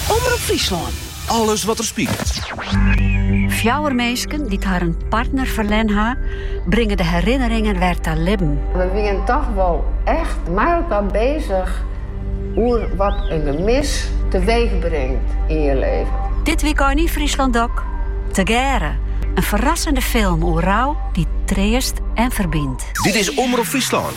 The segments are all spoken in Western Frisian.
Omrop Fryslân, alles wat der spilet. Fjouwer minsken dy't harren partner ferlern ha, bringe de herinneringen wer ta libben. We wienen toch wol echt mei elkaar bezig oer wat in gemis teweech bringt yn je leven. Dit wykein yn Fryslân DOK, Tegearre, in ferrassende film oer rou dy't treast en ferbynt. Dit is Omrop Fryslân.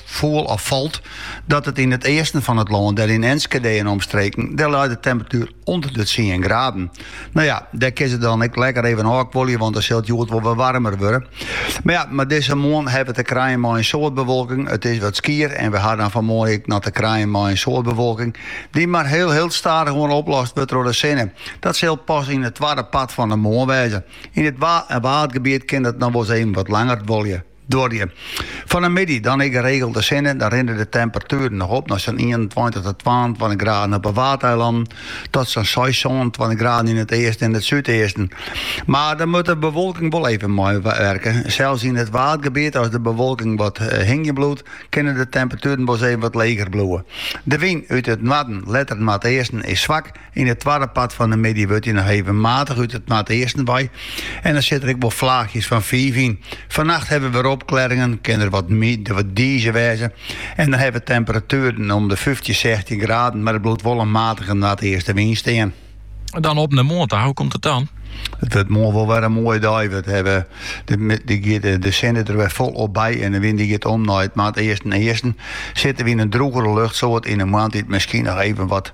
foel of falt, dat it yn it easten fan it lân, dêr yn Enskede en omstreken, dêr leit de temperatuer ûnder de tsien graden. No ja, dêr kinne se dan ek lekker even ôfkuolje, want dêr sil it hjoed wol wat waarmer wurde. Mar ja, mar dizze moarn hawwe we te krijen mei in soad bewolking. It is wat skier en we ha dan fanmoarn ek noch te krijen mei in soad bewolking, dy't mar hiel hiel stadich oan oplost wurdt troch de sinne. Dat sil pas yn it twadde part fan de moarn wêze. Yn it Waadgebiet kin dat noch wol ris even wat langer duorje. Duorje. Fan de middei dan ek geregeld sinne, dan rinne de temperatueren noch op nei sa'n 21 tot 22 graden op 'e Waadeilannen, tot sa'n 26 graden yn it easten en it súdeasten. Mar dan moat de bewolking wol even meiwurke. Sels yn it Waadgebiet, as de bewolking wat eh, hingje bliuwt, kinne de temperatueren wolris even wat leger bliuwe. De wyn út it noarden, letter noardeasten, is swak. Yn it twadde part fan de middei wurdt dy noch even matich út it noardeasten wei en dan sit der ek wol flaachjes fan fiif yn. Fannacht hawwe we opklearringen, kin der wat diize wêze en dan ha we temperatueren om de fyftjin, sechstjin graden, mar der bliuwt wol in matige noardeastenwyn stean. Dan op nei moarn ta, hoe komt it dan? It wurdt moarn wol wer in moaie dei. We hawwe de sinne der wer folop by en de wyn die giet om nei it noardeasten-easten. Sitte we yn in drûgere luchtsoart yn 'e moarntiid miskien noch even wat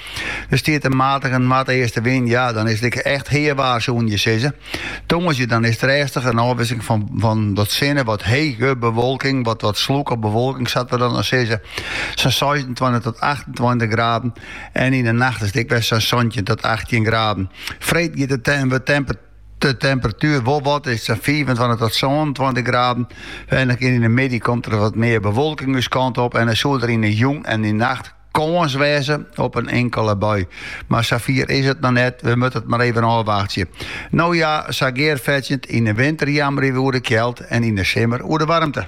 Der stiet in matige noardeastewyn, ja, dan is it ek echt heawaar, soene je sizze. Tongersdei dan is it rêstich in ôfwisseling fan wat sinne, wat hege bewolking, wat wat slûke bewolking sa't we dat sizze. Sa'n seisentweintich tot achtentweintich graden en yn de nacht is it ek wer sa'n santjin tot achttjin graden. Freed giet de temperatuer wol wat, is sa'n fiifentweintich tot sânentweintich graden. En yn de middei komt der wat mear bewolking ús kant op en dan soe der yn de jûn en yn de nacht kâns wêze op in inkele bui. Mar sa fier is it noch net, we moatte it mar even ôfwachtsje. No ja, sa gearfetsjend, yn 'e winter jammerje we oer de kjeld en yn 'e simmer oer de waarmte.